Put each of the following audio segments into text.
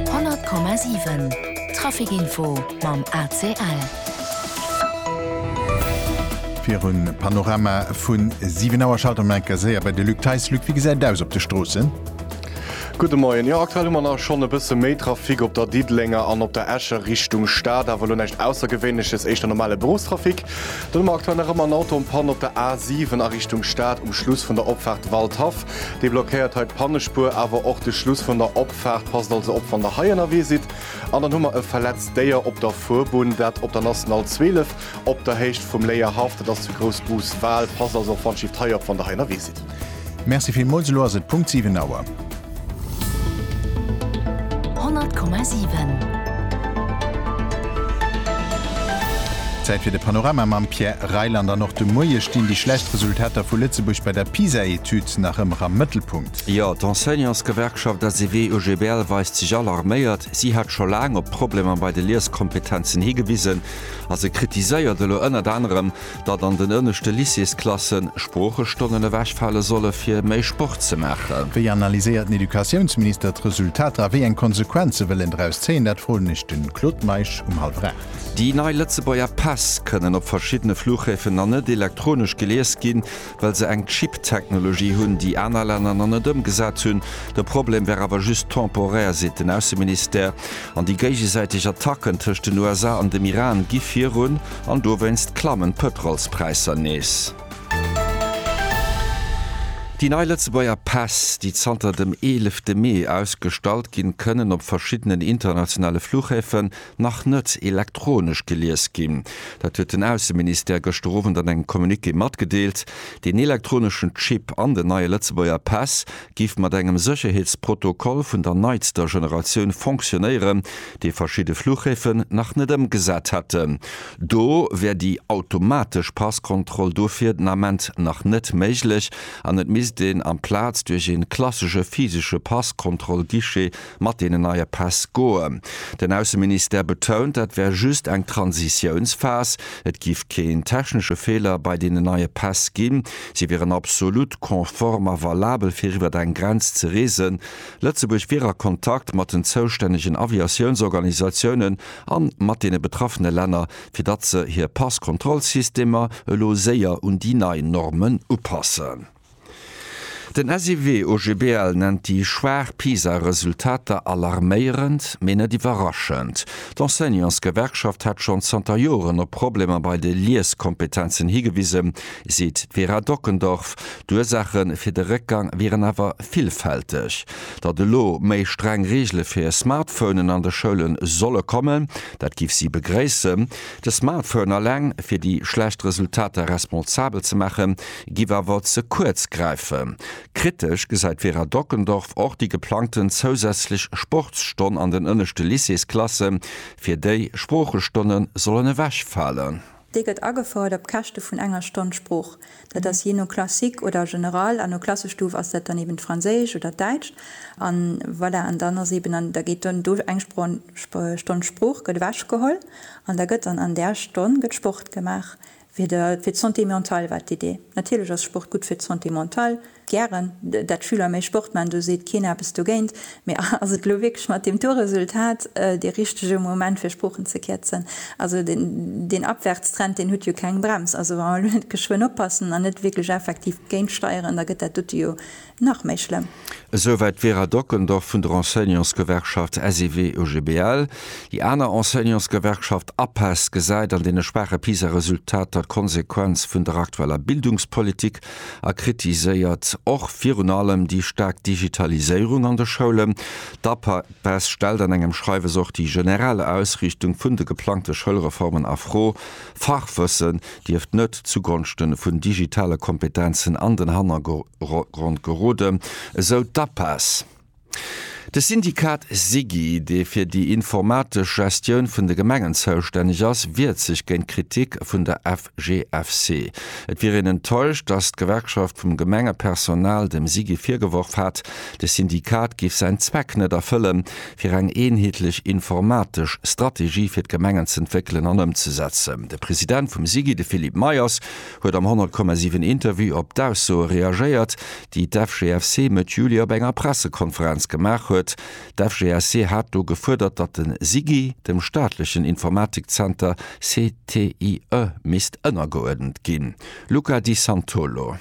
100,7 Trafic Info mam ACL. Virum Panorama vu 7 Auer schalte mer enker séier bei de Luc Theis. Luc, wéi gesäit et aus op de Stroossen? Gudde Moien. Jo, aktuell hu mer nach schonn e bësse méi Trafic op der Diddelenger an op der Escher Richtung Stad, awer elo näischt Aussergewéinleches, éischter normale Beruffstrafic. Dann hu mer aktuell nach ëmmer en Auto am Panne op der A7 a Richtung Stad um Schluss vun der Opfaart Waldhaff. Dee blockéiert hei d'Pannespuer, awer och de Schluss vun der Opfaart. Passt also op wann der hei ënnerwee sidd. An dann hu mer e verletzt Déier op der Fuerbunn, dat op der National 12 op der Héicht vum Léier Haff. Dat ass zu Groussbus-Wal. Passt also och Wandschifft hei op wann der hei ënnerwee sidd. Merci villmools. Elo ass et Punkt 7 Auer. 100,7. Zäit fir de Panorama mam Pierre Reyland. An och de Moie stinn déi schlecht Resultater vu Lëtzebuerg bei der PISA-Etüd nach ëmmer am Mëttelpunkt. Jo, d'Enseignantsgewerkschaft SEW-UGBL weist sech alarméiert. Si hat scho laang op d'Problemer bei de Lieskompetenzen higewisen a se kritiséiert elo ënnert anerem, datt an den ënneschte Lycéesklassen Sproochestonnen ewechfale solle fir méi Sport ze maachen. Wéi analyséiert den Educatiounsminister d'Resultater a wéi eng Konsequenze wëll en draus zéien? Dat froen ech de Claude Meisch um hallwer aacht. Déi nei Lëtzebuerger Päss kënnen op verschiddene Fluchhäfen nach net elektronesch gelies ginn. well se eng Chip-Technologie hunn, déi aner Länner nach net ëmgesat hunn. De Problem wär awer just temporaire, seet den Ausseministère. An déi géigesäiteg Attacken tëscht den USA an dem Iran gi virun an dowéinst klammen d'Pëtrolspräisser nees. Déi nei Lëtzebuerger Päss, déi zanter dem eelefte Mee ausgestallt ginn, kënnen op verschiddenen internationale Flughäfen nach net elektronesch gelies ginn. Dat huet den Ausseministère gëschter Owend an engem Communiqué matgedeelt. Deen elektroneschen Chip an den neie Lëtzebuerger Päss géif mat engem Sécherheetsprotokoll vun der neitster Generatioun fonctionéieren, dee verschidde Fluchhäfen nach net ëmgesat hätten. Do wär déi automatesch Passkontroll dofir den Ament nach net méiglech an et misst een amplaz duerch ee klassesche physesche Passkontrollguichet mat deenen neie Päss goen. Den Ausseministère betount, dat wär just eng Transitiounsphas. Et géif keen technesche Feeler bei deenen neie Päss ginn. Si wieren absolut konform a valabel fir iwwer eng Grenz ze reesen. Lëtzebuerg wier a Kontakt mat den zoustännegen Aviatiounsorganisatiounen a mat deene betraffene Länner, fir datt se hir Passkontrollsystemer elo séier un déi nei Normen upassen. Den SIW-OGBL nennt déi schwaach PISA-Resultater alarméierend, mee net iwwerraschend. D'Enseignantsgewerkschaft hätt schonn zanter Joren op Problemer bei de Lieskompetenzen higewisen, seet d'Vera Dockendorf. D'Ursaache fir de Réckgang wieren awer villfälteg. Datt elo méi streng Reegele fir Smartphonen an de Schoule solle kommen, dat géif si begréissen. De Smartphone eleng fir déi schlecht Resultater responsabel ze maachen, giff awer ze kuerz gräifen. Kritesch gesäit d'Vera Dockendorf och déi geplangten zousätzlech Sportsstonn an den ënneschte Lycéesklasse, fir déi Sproochestonne sollen ewech falen. Déi gëtt agefouert op Käschte vun enger Stonn Sprooch. Dat ass jee no Classique oder General an no Klassestuf ass dat dann eben d'Franséischt oder d'Däitscht. An voilà, an dann ass eben, da geet dann do eng Stonn Sprooch gëtt ewech geholl an da gëtt dann an där Stonn gëtt Sport gemaach. Fir d'Santé mentale war d'Idee, natierlech ass Sport gutt fir d'Santé mentale, gären, dat d'Schüler méi Sport maachen, do seet keen eppes dogéint, mee ass et elo wierklech mat deem Tourresultat dee richtege Moment fir Sproochen ze kierzen? Also deen Abwärtstrend, deen huet jo keng Brems, also wa mer elo net geschwënn oppassen an net wierklech effektiv géintsteieren, da gëtt dat dote jo nach méi schlëmm. Esouwäit d'Vera Dockendorf vun der Enseignantsgewerkschaft SEW-OGBL. Déi aner Enseignantsgewerkschaft APEST gesäit an deene schwaache PISA-Resultater d'Konsequenz vun der aktueller Bildungspolitik a kritiséiert och virun allem déi staark Digitaliséierung an de Schoulen. D'APEST stellt an engem Schreiwes och déi generell Ausriichtung vun de geplangte Schoulreformen a Fro Fachwëssen dierft net zugonschte vun digitale Kompetenzen an den Hannergrond geroden, esou d'APAS. De Syndikat SIGI, dee fir déi informatesch Gestioun vun de Gemengen zoustänneg ass, wiert sech géint d'Kritik vun der FGFC. Et wier een enttäuscht, datt d'Gewerkschaft vum Gemengepersonal dem SIGI virgeworf hat, de Syndikat giff säin Zweck net erfëllen, fir eng eenheetlech informatesch Strategie fir d'Gemengen z'entwéckelen an ëmzesetzen. De President vum SIGI, de Philippe Meyers, huet am 100, 7 Interview op d'Aussoe reagéiert, déi d'FGFC Mëtt Juli op enger Pressekonferenz gemaach huet. D'FGFC hat do gefuerdert, datt de SIGI dem staatlechen Informatikzenter CTIE misst ënnergeuerdent ginn. Luca Di Santolo.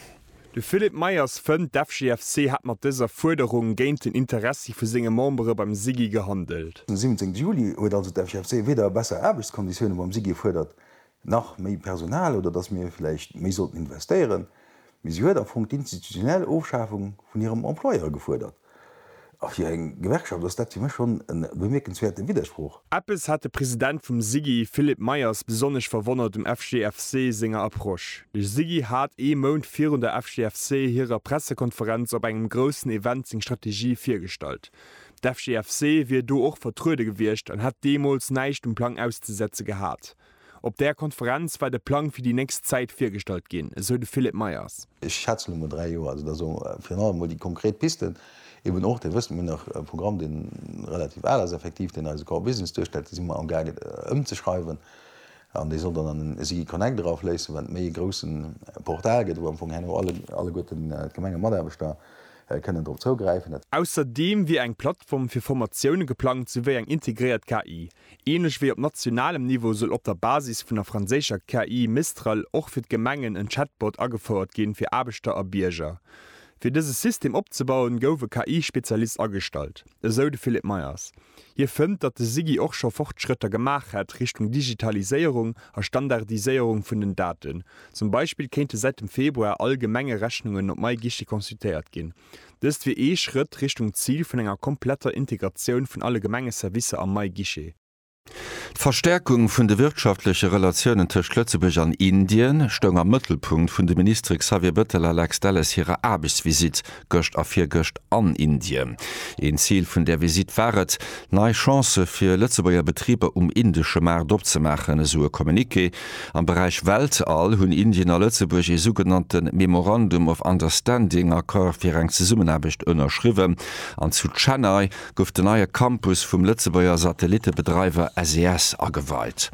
De Philippe Meyers fënnt, d'FGFC hätt mat dëser Fuerderung géint den Interessi vu senge Membere beim SIGI gehandelt. Den 17 Juli huet also d'FGFC weder besser Aarbechtskonditioune beim SIGI gefuerdert, nach méi Personal oder datt mir vläicht méi sollten investéieren, mee si huet am Fong d'institutionell Ofschafung vun hirem Employeur gefuerdert. A fir eng Gewerkschaft ass dat fir mech schonn e bemierkenswäerte Widdersproch. Eppes hat de President vum SIGI, Philippe Meyers, besonnesch verwonnert um FGFC senger Approche. De SIGI hat ee Mount virun der FGFC hirer Pressekonferenz op engem groussen Event seng Strategie virgestallt. D'FGFC wier do och vertruede gewiescht an hätt deemools näischt um Plang auszesetze gehat. Op där Konferenz war de Plang fir déi nächst Zäit virgestallt ginn, esou de Philippe Meyers. Ech schätzen emol dräi Joer. Also dass och virun allem emol déi konkret Pisten eben och, dat wësse mir nach, e Programm dee relativ al ass effektiv, deen eise Core Business duerstellt, dee si mer am gaange ëmzeschreiwen an dee soll dann an den SIGI Connect erafléissen, wat méi e grousse Portal gëtt, wou am Fong herno alleguerten d'Gemengematarbechter kënnen drop zougräifen. Ausserdeem wier eng Plattform fir Formatioune geplangt souwéi eng integréiert KI. Ähnlech wéi op nationalem Niveau soll op der Basis vun der franséischer KI Mistral och fir d'Gemengen en Chatbot agefouert ginn fir Aarbechter a Bierger. Fir dëse System opzebauen, gouf e KI-Spezialist agestallt, esou de Philippe Meyers. Hie fënnt, datt de SIGI och scho Fortschrëtter gemaach hätt Richtung Digitaliséierung a Standardiséierung vun den Daten. Zum Beispill kéinte säit dem Februar all Gemengerechnungen op MyGuichet consultéiert ginn. Dëst wier ee Schrëtt Richtung Zil vun enger kompletter Integratioun vun alle Gemengeservicer am neie Guichet. D'Verstäerkung vun de wirtschaftleche Relatiounen tëscht Lëtzebuerg an Indien stoung am Mëttelpunkt vun de Ministere Xavier Bettel a Lex Delles hirer Aarbechtsvisitt gëscht a virgëscht an Indien. Een Zil vun där Visitt war et, nei Chancë fir Lëtzebuerger Betriber um indesche Maart opzemaachen, esou e Communiqué. Am Beräich Weltall hunn Indien a Lëtzebuerg ee sougenannte Memorandum of Understanding, Accord fir eng Zesummenaarbecht, ënnerschriwwen an zu Chennai gouf den neie Campus vum Lëtzebuerger Satellittebedreiwer SES ageweit.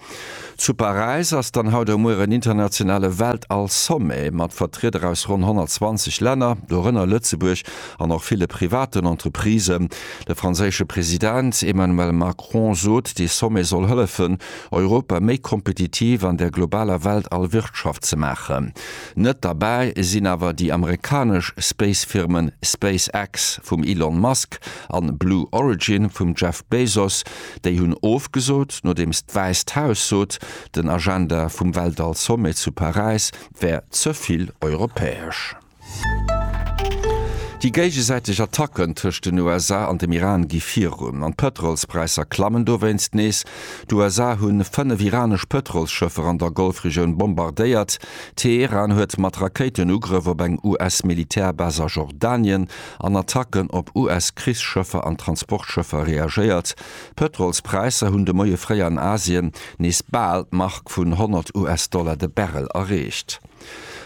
Zu Paräis ass dann haut a muer en internationale Weltall-Sommet mat Vertrieder aus ronn 120 Länner, dorënner Lëtzebuerg, an och ville privaten Entreprisen. De franséische President Emmanuel Macron sot, dee Sommet soll hëllefen, Europa méi kompetitiv an der globaler Weltall-Wirtschaft ze maachen. Net derbäi sinn awer déi amerikanesch Space-Firmen SpaceX vum Elon Musk an Blue Origin vum Jeff Bezos. Déi hunn ofgesot, nodeems d'Wäisst Haus sot, den Agenda vum Weltall-Sommet zu Paräis wär ze vill europäesch. Déi géigesäiteg Attacken tëscht den USA an dem Iran gi virun, an d'Pëtrolspräisser klammen dowéinst nees. D'USA hu fënnef iranesch Pëtrolsschëffer an der Golfregioun bombardéiert. Teheran huet mat Rakéiten Ugrëff op eng US-Militärbas a Jordanien an Attacken op US-Krichsschëffer an Transportschëffer reagéiert. D'Pëtrolspräisser hunn de Moie fréi an Asien nees bal d'Mark vun 100 US-Dollar de Barrel erreecht.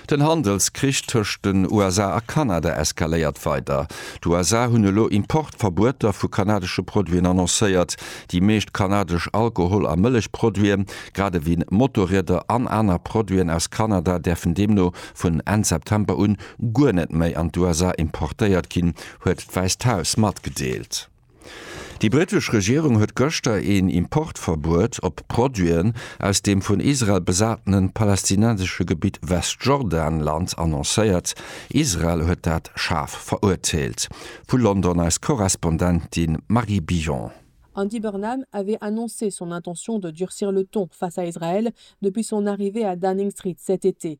Den Handelskrich tëscht den USA a Kanada eskaléiert weider. D'USA hunn elo Importverbueter vu kanadesche Produiten annoncéiert. Déi meescht kanadesch Alkohol a Mëllechproduiten, grad ewéi Motorrieder an aner Produiten aus Kanada däerfen deemno vun Enn September un guer net méi an d'USA importéiert ginn, huet d'Wäisst Haus matgedeelt. Déi brittesch Regierung huet gëschter een Importverbuet op Produiten aus dem vun Israel besatenen palästinensesche Gebitt Westjordanland annoncéiert. Israel huet dat schaarf verurteelt. Vu London eis Korrespondentin Marie Billon. Andy Burnham avait annoncé son intention de durcir le ton face à Israël depuis son arrivée à Downing Street cet été,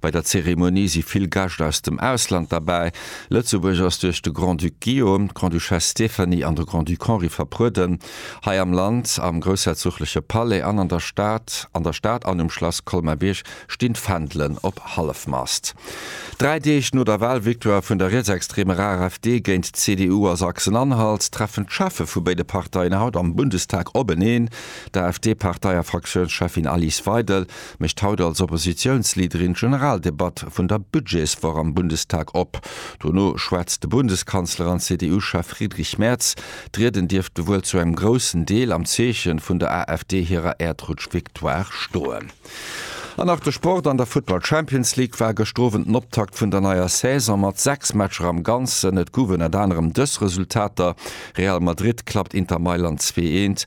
Bei der Zeremonie si vill Gäscht aus dem Ausland derbäi. Lëtzebuerg ass duerch de Grand-Duc Guillaume, d'Grande-Duchesse Stéphanie an de Grand-Duc Henri verprueden. Hei am Land, am groussherzogleche Palais an an der Stad, an der Stad an um Schlass Colmar-Bierg stinn d'Fändelen op Hallefmast. Dräi Deeg no der Wahlvictoire vun der rietsextreemer AfD géint d'CDU a Sachsen-Anhalt, treffen d'Cheffe vu béide Parteien haut am Bundestag openeen. D'AfD-Partei a Fraktiounscheffin Alice Weidel mécht haut als Oppositiounsleaderin d'Generaldebatt vun der Budgetswoch am Bundestag op. Dono schwätzt de Bundeskanzler an CDU-Chef Friedrich Merz. D'Rieden dierfte wuel zu engem groussen Deel am Zeeche vun der AfD hirer Äerdrutsch-Victoire stoen. An nach de Sport, An der Futtball Champions League war gëscht Owend den Optakt vun der neier Saison mat 6 Matcher am Ganzen. Et guwen ënner anerem dës Resultater, Real Madrid klappt Inter Mailand 2 eent,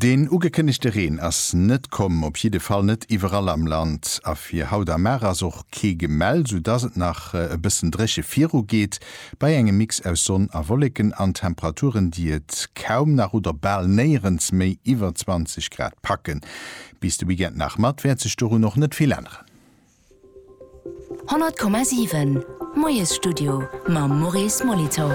Deen ugekënnegte Reen ass net komm, op jidde Fall net iwwerall am Land. A fir haut am Maach ass och kee gemellt, soudass et nach e bëssen dréche viru geet, bei engem Mix aus Sonn a Wolleken an Temperaturen, déi et kaum nach oder bal néierens méi iwwer 20 Grad packen. Bis de Weekend nach mat wäert sech dorun och net vill änneren. 100,7 Moiesstudio mam Maurice Molitor.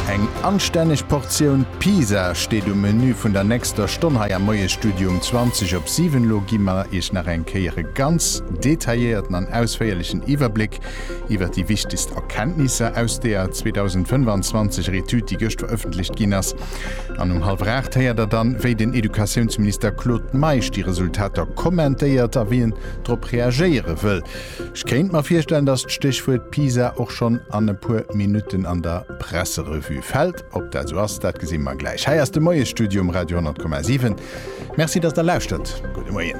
Eng anstänneg Portioun Pisa steet um Menü vun der nächster Stonn hei am Moiesstudio um 20 op 7. Lo gi mer Iech nach eng Kéier e ganz detailléierten an ausféierlechen Iwwerbléck iwwer déi wichtegst Erkenntnisser aus der 2025 er Etüd, déi gëscht verëffentlecht ginn ass. An um hallwer 8 héiert der dann, wéi den Educatiounsminister Claude Meisch déi Resultater kommentéiert a wéi en drop reagéiere wëll. Ech kéint mer virstellen, datt d'Stéchwuert Pisa och schonn an e puer Minutten an der Presserevue fält. Ob dat esou ass, dat gesi mer gläich. Hei ass de Moiesstudio um Radio 10,7. Merci, datt der lauschtert. Gudde Moien.